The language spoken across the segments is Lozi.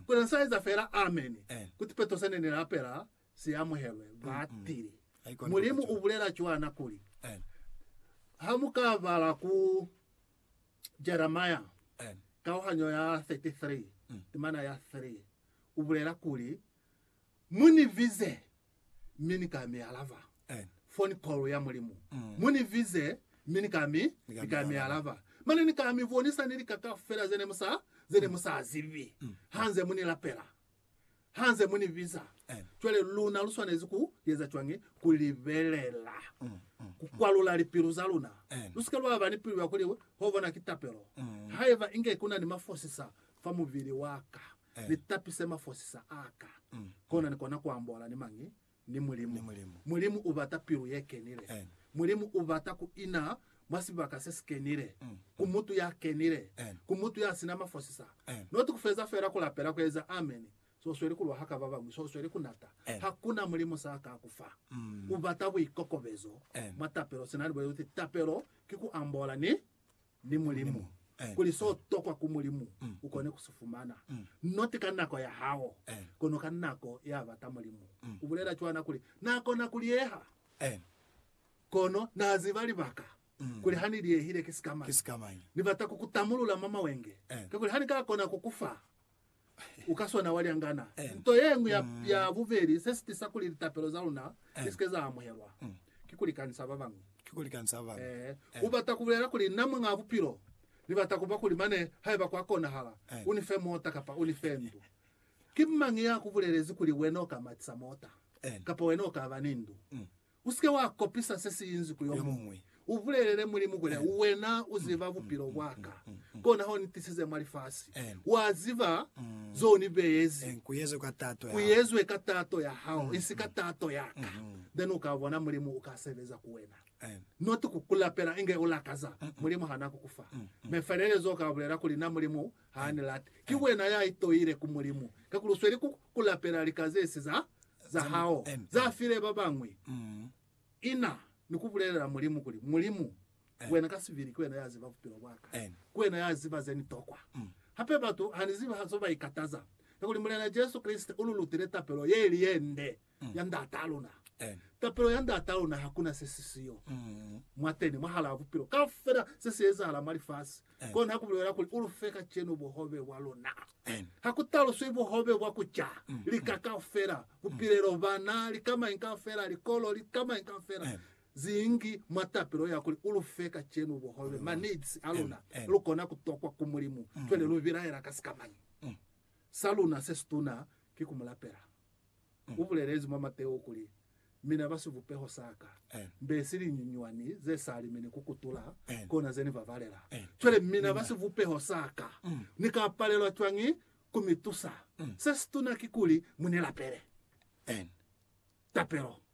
Ku na sa eza fela ameni. Kuti Petro sene ne lapela si amuhelwe, ba tili, Mulimu u bulela cwana kuli, Ha mu ka bala ku Jeremia kauhanyo ya 33, timana ya 3, u bulela kuli, Mu ni bize, mi ni ka mi alaba. Amen. Phone call ya Mulimu. Mm. Mu ni bize, mi ni ka mi, Ni ka ni mi ka mi alaba. alaba. Mane ni ka mi bonisa ni lika kaufela ze ne mu sa, ze ne mu sa zibi. Mm. Hanze mu ni lapela. Hanze mu ni biza. Amen. Cwale luna lu swanezi ku eza cwañi? Ku libelela. Mm. Mm. Ku kwalula lipilu za luna. Amen. Lu sika lwa ba ni pilu ya kuli, Ho bona ki tapelo. Mm. Haiba inge ku na ni mafosisa fa mubili wa ka. Ni tapise mafosisa a ka, kona ni kona ku ambola ni mañi? Ni Mulimu. Mulimu u bata pilu ye kenile. Mulimu u bata ku ina mwa sibaka se si kenile, ku mutu ya kenile, ku mutu ya sina mafosisa, not ku feza fela ku lapela ku eza amen, so u sweli ku lwa haka ba bañwi, so u sweli ku nata. Hakuna mulimu sa ka ku fa. U bata buikokobezo mwa tapelo, sina ni bulezi kuti tapelo ki ku ambola ni. ni Mulimu, kuli so tokwa ku Mulimu u kone ku si fumana, not ka nako ya hao, kono ka nako ya bata Mulimu. U bulela cwana kuli, Na kona ku liyeha, kono na ziba libaka kuli ha ni liyehile ki sikamañi. Ni bata ku ku tamulula mwa mawenge, kakuli ha ni ka kona ku ku fa, u ka swana wa lyangana. Nto ye ñwi ya, ya bubeli se si tisa kuli litapelo za luna li si ke za amuhelwa, ki ku likanisa ba bañwi. Ki ku likanisa ba bañwi. Ee, u bata ku bulela kuli, Na Muñ'a Bupilo, Ni bata ku ba kuli mane, haiba kwa konahala, U ni fe mota kapa U ni fe ndu. Ki mañi ya ku bulelezi kuli wena u ka matisa mota, kapa wena u ka ba ni ndu? Usike wa kopisa se si inzi ku yomuñwi. U bulelele Mulimu kuli, Wena u ziba bupilo bwaka, kona ho ni tisize mwa lifasi. Wa ziba zo ni beyezi. Ku yezwe ka tato ya hao, isi ka tato yaka. Then u ka bona Mulimu uka sebeza ku wena. Not ku ku lapela inge u lakaza Mulimu ha na ku ku fa. Mefelelezo u ka bulela kuli, Na Mulimu, Ha ni late. Ki wena ya itoile ku Mulimu, kakuli u sweli ku, ku lapela lika ze si za, za hao, za file ba bañwi. Ina ni ku bulelela Mulimu kuli, Mulimu, wena ka sibili ki wena ya ziba bupilo bwa ka. Ki wena ya ziba ze ni tokwa. Hape batu ha ni zibi ha zo ba ikataza, kakuli Mulena Jesu Kreste u lu lutile tapelo ye ili ye nde. ya Ndat'a luna. Tapelo ya Ndat'a luna hakuna se si siyo mwateni, mwahalaa bupilo kaufela. Se si ezahala mwa lifasi, kona ku bulela kuli, U lu fe kacenu buhobe bwa luna. Ha ku taluswi buhobe bwa ku ca, lika kaufela, bupilelo, bana, lika mañi kaufela, likolo, lika mañi kaufela, zingi mwa tapelo ya kuli, U lu fe kacenu buhobe, ma needs a luna. Lu kona ku tokwa ku Mulimu cwale lu bilaela ka sikamañi? Sa luna se situna ki ku Mu lapela. U bulelezi mwa Mateo kuli, Mina ba sivupeho sa Ka, mbe si linyunywani ze sa limini ku kutula, kona ze Ni ba balela. Cwale, mina ba sivupeho sa Ka, Ni ka palelwa cwañi ku mi tusa? Se situna kikuli mu Ni lapele tapelo.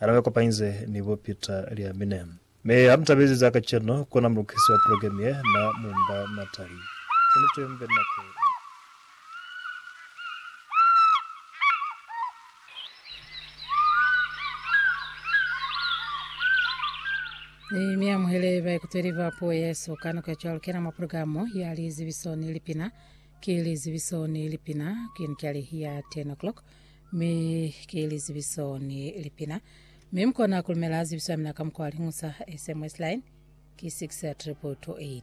Hana ba kopanyize ni bo Peter lya mine. Mi ha mu tabezi za kacenu, ku na mulukisi wa pulogemu ye na mu mba Natalie. Ki niti mu be ni nako ye. Ni mi amuhele baikuteli ba puo ye so ka nako ya cwalo. Kena mwa pulogalamu ya lizibiso ni lipina. Ki lizibiso ni lipina. Ki ni cali ya 10 o'clock. Mi ki lizibiso ni lipina. Mi mukona kulumela zibiso yamina ka mukwa wa lingusa, SMS line, ki 6 222 8.